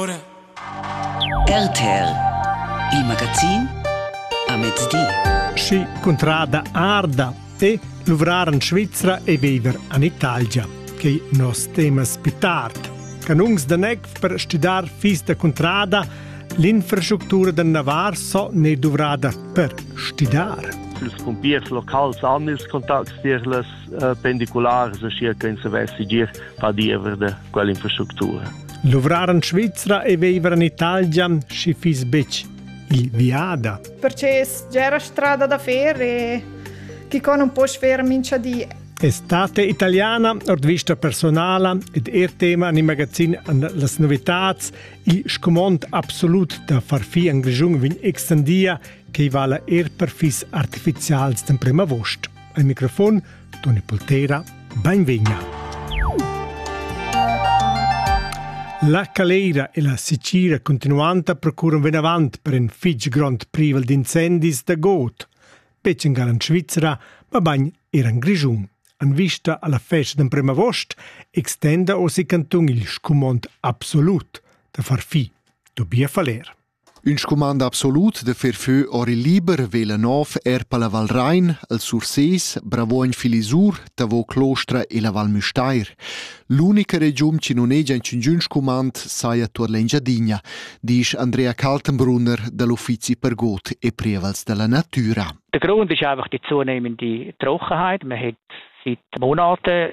RTL Il magazin a mezdi. Schi cuntrada arda e luvrar en Svizra e viver en Italia, che nos temas più tard. Canungs da neg per studar fis da cuntrada, l'infrastructura da Navar so ne duvrada per studar. Ils pumpiers locals han ils contacts tier les eh, pendiculars, schier che in savessi gir per diever de quell'infrastructura. Luvrar en Svizra e viver in Italia schi fiss betg il viada. Perché era strada da fer e chi con un po sfer mincha di. Estate italiana, ord vista personala ed er tema in magazin an las novitats, il scumond absolut da farfi en Grischung vin extendia, che vala er per fis artificials d'em prima vost. Al microfon Toni Poltera, benvegna! La Caleira e la Sicira continuanta procuran vinavant per in fitg grond privel d'incendis da god, betg en gar en Svizra, mabain er en Grischun. En vista alla festa d'emprem agost extenda osi cantun il scumond absolut da far fi. Tobias Faller. Ün scumand absolut da fer fö or il liber vela nov eir per la Val Rain, al Surses, Bravoin Filisur, Tavo Clostra e la Val Müstair. L'unica regiun chi nun hegia inchüngün scumand saja tuot l'Engiadina, disch Andrea Kaltenbrunner dal Uffizi per God e Prievals della Natura. Der Grund ist einfach die zunehmende Trockenheit. Man hat seit Monaten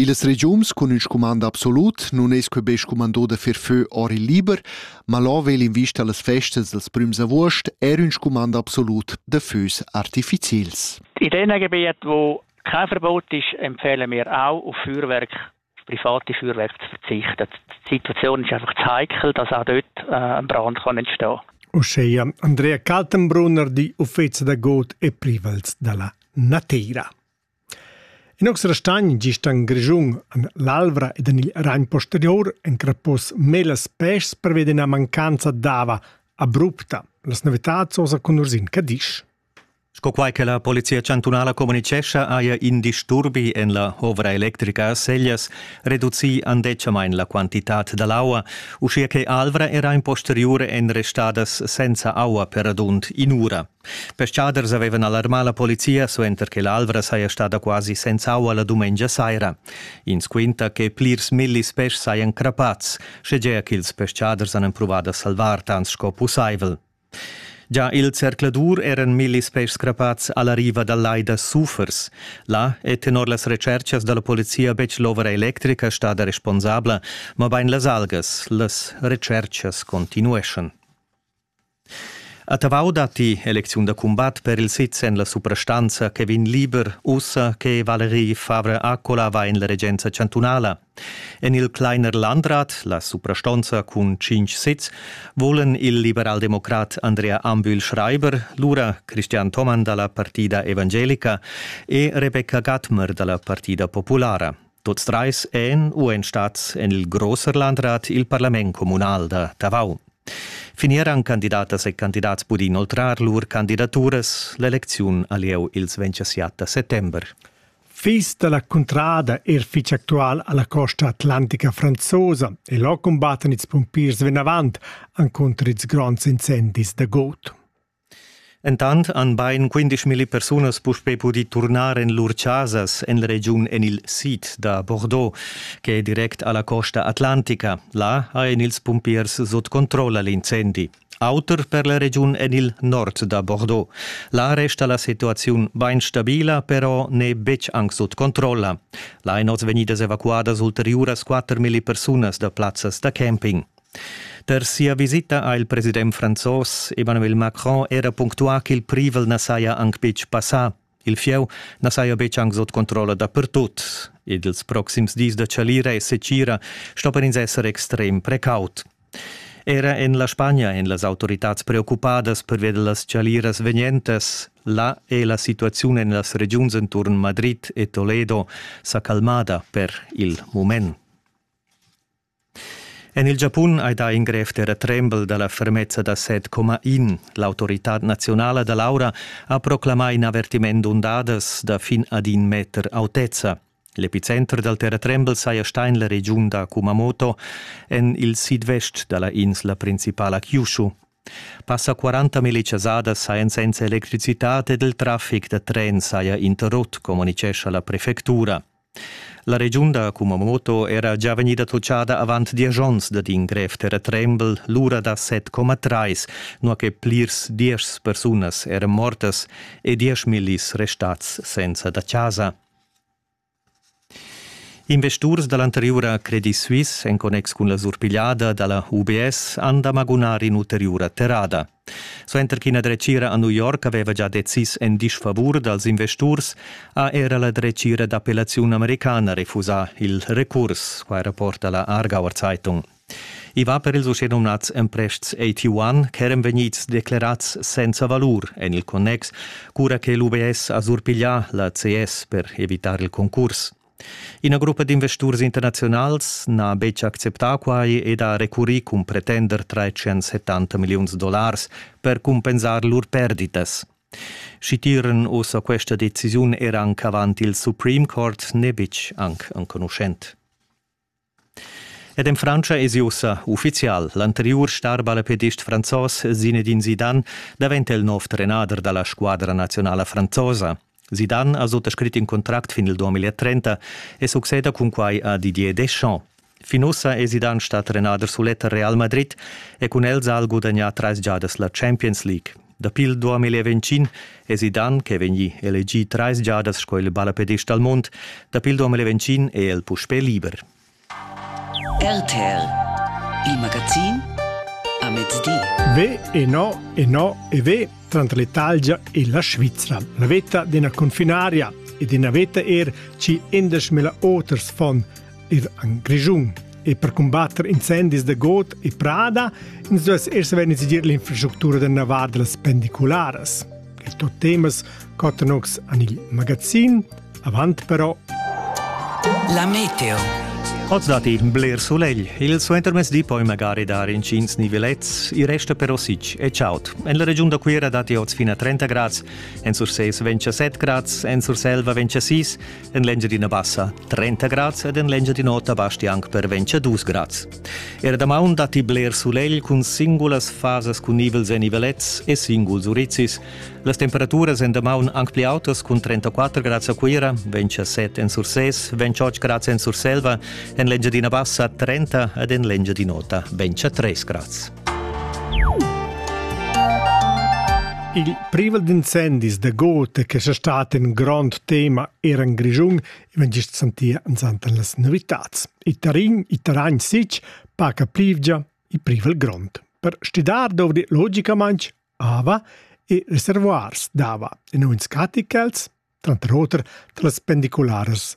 Illas regiuns cun ün scumand absolut nun es que be scumandò da fer fö or il liber, ma là vegl in vista las festas dels prüms avuost eir ün scumand absolut da fös artificiels. In den Gebiet, wo kein Verbot ist, empfehlen wir auch, auf Feuerwerk, auf private Feuerwerke zu verzichten. Die Situation ist einfach zu heikel, dass auch dort äh, ein Brand kann entstehen kann. Osceia, Andrea Kaltenbrunner, die Uffizi da Got e Privels della Natira. In oz restagn gist en Grischun, en l'Alvra ed en il Ragn posterior encrapos mez las peschs pervia d'ina mancanza d'ava abrupta. Las novitads osa con Ursin Cadisch. Sco quai che la Polizia chantunala communicescha, haja in disturbi en la ovra electrica a Sellas reducì andetgamain la quantitad da l'aua, uschia che Alvra era in posteriur en restadas senza aua per radund in'ura. Peschaders avevan alarmà la polizia suenter che l'Alvra saja stada quasi senz'aua la dumengia saira. Ins quinta che plirs millis peschs sajan crappads, schegea ch'ils peschaders han empruvà da salvar tant sco pussaivel. Già il zercladur eran millis peschs crappads a la riva dal lai da Sufers. Là è tenor las retschartschas da la polizia betg l'ovra electrica stada responsabla, mabain las algas. Las retschartschas continueschan. A Tavau datti elecziun da cumbat per il sitz en la suprastanza Kevin Lieber, ussa che Valerie Favre-Accola va en la regenza chantunala. En il Kleiner Landrat, la suprastonza cun cinq sitz, volan il liberaldemocrat Andrea Ambühl Schreiber, lura Christian Thomann dalla Partida Evangelica e Rebecca Gattmer dalla Partida Populara. Tots treis èn u èn stats en il Großerlandrat il parlament communal da Tavau. Fin eran candidatas e candidats pudì inoltrar lur candidaturas. L'elecziun a lieu ils 27 settember. Fils da la cuntrada er fitg actual a la costa atlantica franzosa e là cumbattan ils pumpiers vinavant encunter ils gronds incendis da god. Entant han bain quindesch milli persunas puspè pudì turnar en lur chasas en la regiun en il sid da Bordeaux, che è direct a la costa atlantica. Là hajan ils pumpiers sut controlla l'incendi. Auter per la regiun en il nord da Bordeaux. Là resta la situaziun bain stabila, però n'è betg anc sut controlla. Là èn oz vegnidas evacuadas ulteriuras 4 milli persunas da plazzas da camping. Per sia visita ha il president franzos Emmanuel Macron era punctuà ch'il privel na saja anc betg passà. Il fieu na saja betg anc sut controlla dapertut ed ils proxims dis da chalira e secira sto per ins esser extrem precaut. Era en la Spagna èn las autoritads preoccupadas pervia da las chaliras vegnentas. Là è la situaziun en las regiuns enturn Madrid e Toledo sa calmada per il mument. En il Giapun hai dà in grev terratrembel da la fermezza da 7,1. L'autoritad naziunala da l'aura ha proclamà in avertiment d'undadas da fin ad in meter autezza. L'epicenter dal terratrembel saja stà en la regiun da Kumamoto, en il sidvest da la insla principala Kyushu. Passa 40 milichasadas sajan senza electricitad ed il traffic da tren saja interrott, communicescha la prefectura. La regiun da Kumamoto era gia vegnida totschada avant diesch onns dad in grev terratrembel, l'ura da 7,3, nua che plirs diesch persunas eran mortas e diesch millis restads senza da chasa. Investurs da l'anteriura Credit Suisse en connex cun la surpigliada da la UBS han da magunar in'ulteriura terrada. Suenter ch'ina dretgira a New York aveva gia decis en disfavur dals investurs, ha era la dretgira d'appellaziun americana refusà il recurs, quai rapporta la Aargauer Zeitung. I va per ils uschenumnads emprests AT1 ch'eran vegnids declerads senza valur en il connex, cura che l'UBS ha surpiglià la CS per evitar il concurs. Ina gruppa d'investurs internaziunals n'ha betg acceptà quai ed ha recurrì cun pretender 370 milliuns dollars per cumpensar lur perditas. Schi tiran ossa questa decisiun era anc avant il Supreme Court n'è betg anc enconuschent. Ed en Frantscha esi ussa uffizial. L'anteriur starballapedist franzos Zinedine Zidane daventa il nov trenader da la squadra nazionala franzosa. Zidane ha suttascrit in contract fin il 2030 e succeda cun quai a Didier Deschamps. Fin ussa è Zidane stà trenader sulet a Real Madrid e cun el ha el gudagnà trais giadas la Champions League. Dapi il 2020 èsi Dan ch'è vegnì elegì trais giadas sco il ballapedist dal mund. Dapi il 2021 è el puspè liber. RTL, il magazin a mezdi. Ve e no e no e ve tranter l'Italia e la Svizzera. La veta d'ina confinaria e d'ina veta er ci endesch mila oters von ir en Grischun. E per combatter incendis da got e prada ins duess er saver decidir l'infrastructura da navar da las pendicularas. Il tot temas Cotanox en il magazin. Avant però. La meteo. Oz dat in bler sulegl. Il suentermezdi poi magari dar incins nivelets, i resta però sic e chaud. En la regiun da Cuira datti oz fino a 30 grads, en Sursés 27 grads, en Surselva 26, En l'Engiadina Bassa 30 grads ed en l'Engiadin'Ota basti anc per 22 grads. Era damaun datti bler sulegl cun singulas fasas cun nivels en nivelets e singuls urizis. Las temperaturas en damaun anc pli autas cun 34 grads a Cuira, 27 en Sursès, 28 grads en Surselva, en l'Engiadina Bassa 30 ed en l'Engiadin'Ota 23 grads. Il privel d'incendis da Gote che sa stat in grond tema era in Grischun, vegn gist sentia ansanta las novitads. I tarin, i taragn sich, paca plivgia, i privel grond. Per stidar dovri logicamaintg ava e reservoirs d'ava, in uns caticels, tranter oter, las pendicularas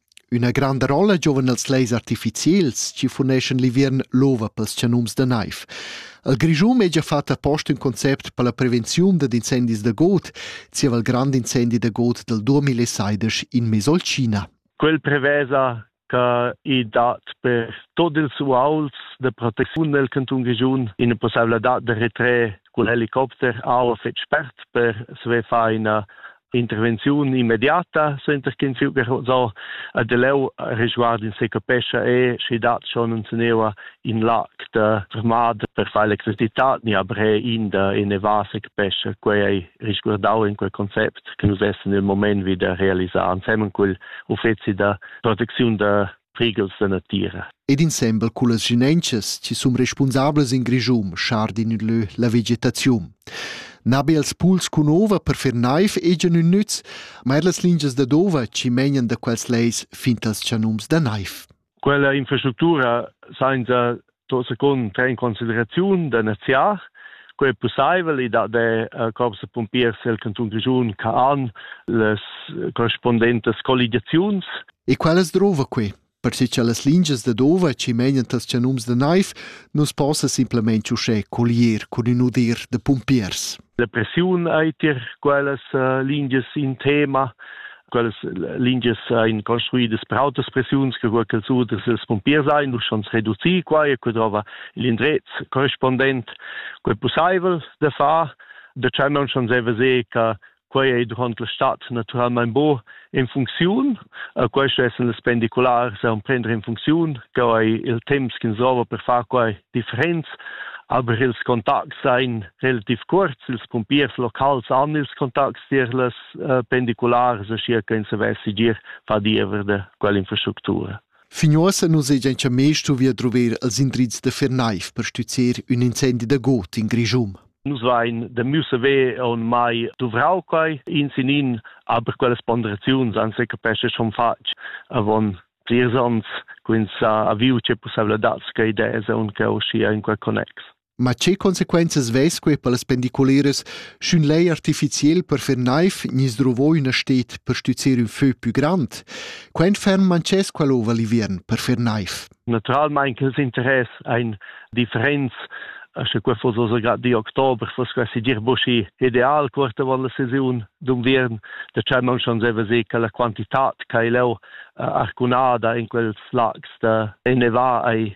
Üna granda rolla giovan els leis artificiels chi funeschan l'inviern l'ova pels chanums da naiv. El Grischun è già fat appost ün concept per la prevenziun dad incendis da god, zieva il grand incendi da god del 2016 in Mesolcina. Quel prevesa che i dat per tot ils uauls de proteziun del canton Grischun ina possibilità de retrer cun helicopter aua fetg spert per sve far ina intervenziun immediata center kin fiu so a de leu resguard in se capescha e sche dat schon un senewa in lag da armada per far electricità ni abre in da ene vase capescha quei risguardau in quel concept che nus essen im moment wieder realisar ansemmen cul uffeci da proteziun da prighels da natira. Ed insembel cullas ginenchas chi sun respunsablas in Grischun schardin in lö la vegetaziun. Nabe als puls cun ova per fer naif egian ün nüz, ma er las lingias da d'ova chi megnan da quels leis fin tals chanums da naif. Quella infrastructura sainza to secund in consideraziun da neziar co è possibel i da de uh, corps de pompiers el canton Grischun che han les correspondentes colligaziuns E quellas drova qui? Perché che las lingias da dova ci menan tas chanums de naiv non possa simplemente usce collier con un udir de pompiers. La pressiun ei tier quellas lingias in tema. Quellas lingias ein construidas per autas pressiuns che quel che suders els pompiers ein, dus schon reducir quai e que trova il indrez corrispondent quel pusseivel da far. Da tschemmen schon se veser che quei ei durant la stad naturalmein bo in funcziun e questo es las pendiculars a prender in funcziun che è il temps che serva per far quai differents aber ils contacts seien relativ kurz, ils pumpiers locals haben ils Kontakt tier les uh, pendiculars, circa in se vessi gir fa diever de quell'infrastruttura. Fin uossa nu segian chameis stuvi druver els indrizs da Fernaiv per stüzzer ün incendi da got in Grischun. Nus vain da müsse ve on mai duvrau quai in sinin, aber quelles ponderaziuns an se capesce schon fatg avon plirs ons, quins ha aviu ce pussavla dats che idee se un che uscia in quel connex. Ma che consequenzas vess quei per las pendiculeras, sch'ün lei artificiel per fer naiv gnis druvò üna stet per stüzzer ün fö pü grand? Quent ferm manchess quel ova l'inviern per fer naiv? Naturalmein che els interess ein differents sche quei foss also grad di Oktober, foss quasi dir buschi ideal quarta van la sesiun d'unviern, da cha non schon seva se che la quantitat che leu arcunada in quels lags da ennevar ei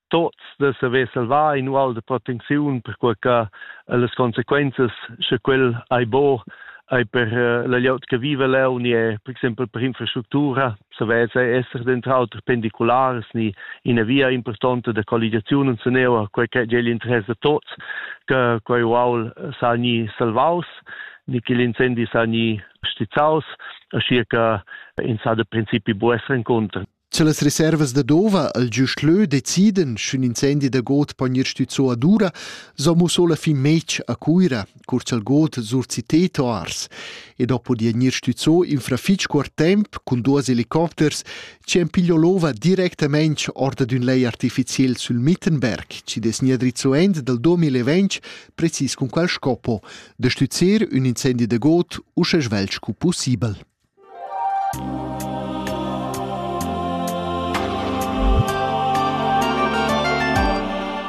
tots de saver salvar in ual de protecziun per quei che las consequenzas sche quel ei bo ei per uh, la glieud che vive leu ni è, per exempel per infrastruttura savess esser dentro auter pendiculars ni ina via importante de colligazion und seneo quei che gli interessa tots che quei ual sa ni salvaus ni che l'incendi sa ni stizzaus aschi che in sa de principi bu essere incontro Sche las reservas da Dova al giust lö decidan, sch'ün incendi da god pon ir stüzzo ad ura, so musso la fin mec a Cuira, cur cha'l god surciteto ars. E dopo di gnir stüzzo in fra fich cuort temp cun duos helicopters chi han piglio l'ova directamente orda d'ün lei artificiel sül Mittenberg, chi dess gnir drizzo end dal 2020 precis cun qual scopo da stüzzer ün incendi da god usche svelt scu pussibel.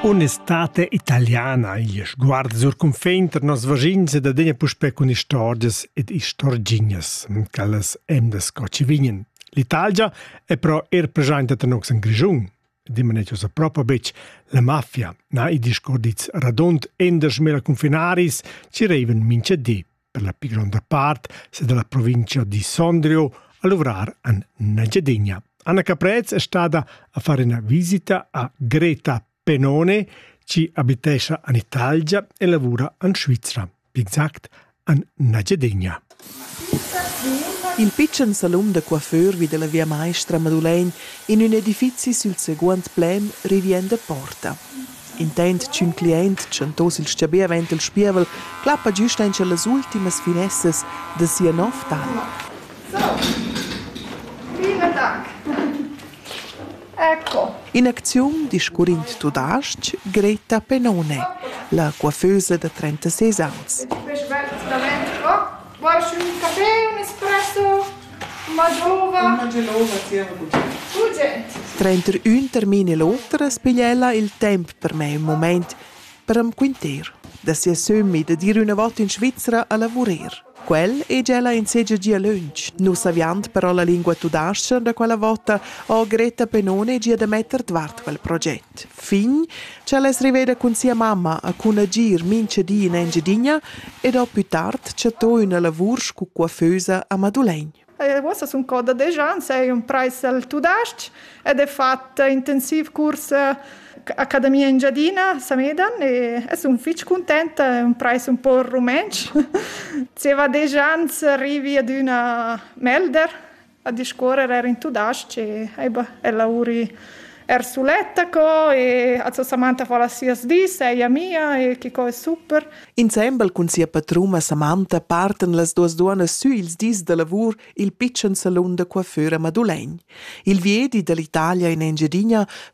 Un'estate italiana igl sguard sur cunfin tar nos vaschins ed adegna puspè cun istorgias ed istorgignas, quellas emdas co ci vignen. L'Italia è però er presenta tar nox en Grischun. Dimanet usa propo betg la mafia, na i discordits radont endas mela cunfinaris ci reiven mincha di. per la pli gronda part se dalla provincia di Sondrio a luvrar en Nagyadegna. Anna Caprez è stata a fare una visita a Greta Penone, ci abitesce in Italia e lavora in Svizzera, più exact an Nagyadegna. In pitschen salon da coiffeur vi della via Maestra Madulegn in un edifizi sul seguent plem rivien da Porta. Intent ch'ün cliaint tschantoss il stabì avaunt il spievel clappa güst aint las ultimas finessas da sia novtà. Viva tac! Ecco. In acziun discurrind tudasc Greta Penone, la coiffeusa da 36 ans. Quest bel instrument qua Vuoi un caffè, un espresso, una gelova? Una gelova tiene buttare. Urgent! Tranter ün termin e l'oter as piglia ella il temp per me ün moment per am quinter da sia sömmi da dir üna vota in Svizra a lavurer. Quel hegia ella in segia gia lönch. Nus saviand però la lingua tudascha da quella vota ho Greta Penone gia da metter dvart quel proget. fin ch'el es riveda cun sia mamma e cun agir mincha di in Engiadina ed ho pü tard chattò üna lavur scu coiffeusa a Madulegn. E uossa sun cò da desch ans, eir ün trais al tudas-ch ed he fat intensiv curs Accademia Engiadina Samedan e sun fich cuntenta, ün trais ün po rumentsch. Zieva desch ans arrivi ad üna Melder A discuorrer eir in tudas-ch e aiba e lavuri er suletta co e a Samantha fa las sias dis, ella mia e que co es super. Insembel cun sia patruma Samantha partan las duas duonnas sü ils dis da lavur i'l pitschen salun da coiffeur a Madulegn. Il viedi da l'Italia in Engiadina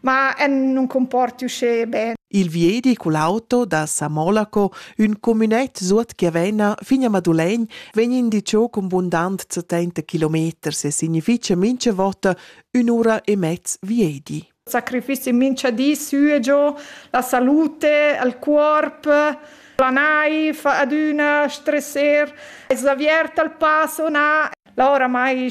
ma non comporti usce bene. Il viedi cul auto da Samolaco, ün comünet suot Chiavena fin a Madulegn, vegn indiciò con bundant 70 kilometers e significha mincha vota ün'ura e mezz viedi. Sacrifici mincha di sü e giò, la salute, il corp, la naif ad üna stresser, es avierta il passo na, la ora mai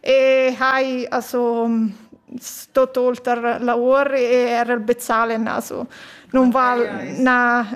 e hai also stot olter lavor e era bezahlen also non val na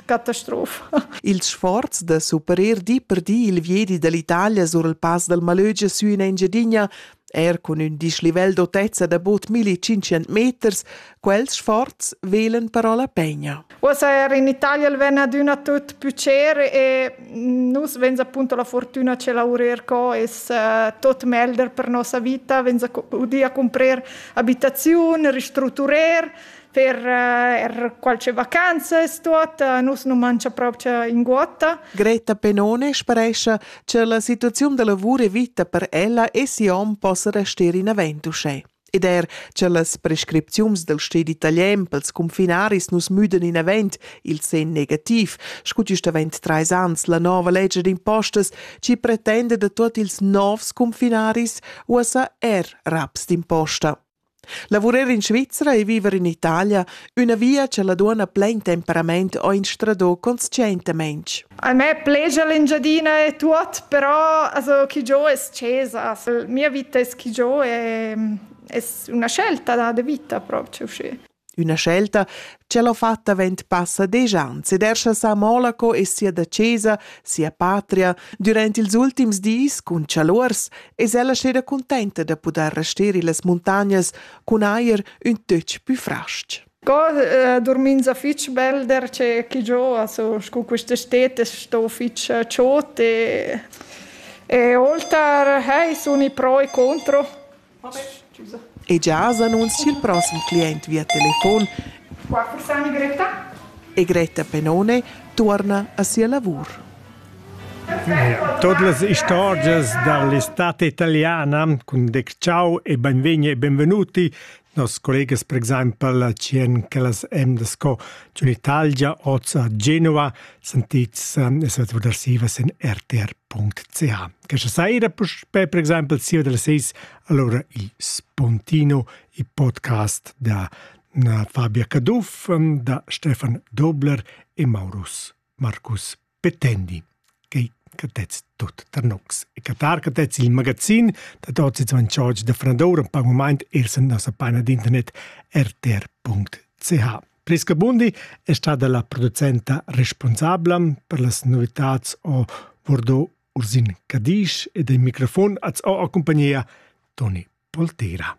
catastrofa. Ils sforzs da superer di per di il viedi dall'Italia sur il pass dal Malögia su in Engiadina er cun ün dislivel d'autezza da bod 1500 meters, quels sforz velen però la pegna. Uossa er in Italia el ven adüna tut pücer e nus vens appunto la fortüna ce laurer co es uh, tot melder per nossa vita, vens udir a comprer abitaziun, ristruturer, per uh, er qualche vacanzas tot, uh, nus nu mangia proprio in guotta. Greta Penone sparescia che la situazione da lavoro e vita per ella e sia hom possa restare in aventuschè. Ed er che las prescripziuns dal sted italian pels cunfinaris nus müdan inavent il sen negativ, scu gist avent trais ans la nova legge d'impostas ci pretenda da tuot ils novs cunfinaris uossa er raps d'imposta. Lavurar in Svizzera e viver in Italia Üna via cha la duonna plain temperament ho instradò conscientamein. A me plegia l'Engiadina e tuot, però also chi giò es scesa. Mia vita es chi giò e es üna scelta da de vita proprio uscì. Üna scelta cha l'ho fatta vent passa desch ans ed eir sa Monaco e sia dacesa, sia patria, durant ils ultims dis cun chaluors, es ella steda cuntenta da pudair rester illas muntagnas cun eir ün töch pü fras-ch. Co eh, dormins a fich belder che chi giò, also scu quista stet es sto fich eh, chod e e olter hey, suni pro e contro. Vabbè, scusa. E già s'annunzia il prossimo client via telefon. Qua sta Greta? E Greta Penone torna a sia lavur. Tuot las istorgias da l'estate italiana cun dec ciao e bainvegni e benvenuti. Noss collegas per exaimpel a tschien ch'ellas emdas sco giun Italgia, oz a Genova, sentits e svet vadar sivas in rtr.ch. Questa saira puspè per exaimpel siva dalle 6 allora il Spontino, il podcast da Fabia Caduff, da Stefan Dobler e Maurus Marcus petendi quei catets tut tar nocs e catar catets il magazin da tots ils manchorts da Frandoura per moment er sen nossa paina d'internet rtr.ch. Prisca Bundi è stata la producenta responsabla per las novitads o Bordeaux Ursin Cadisch e dei microfon az o accompagnia Toni Poltera.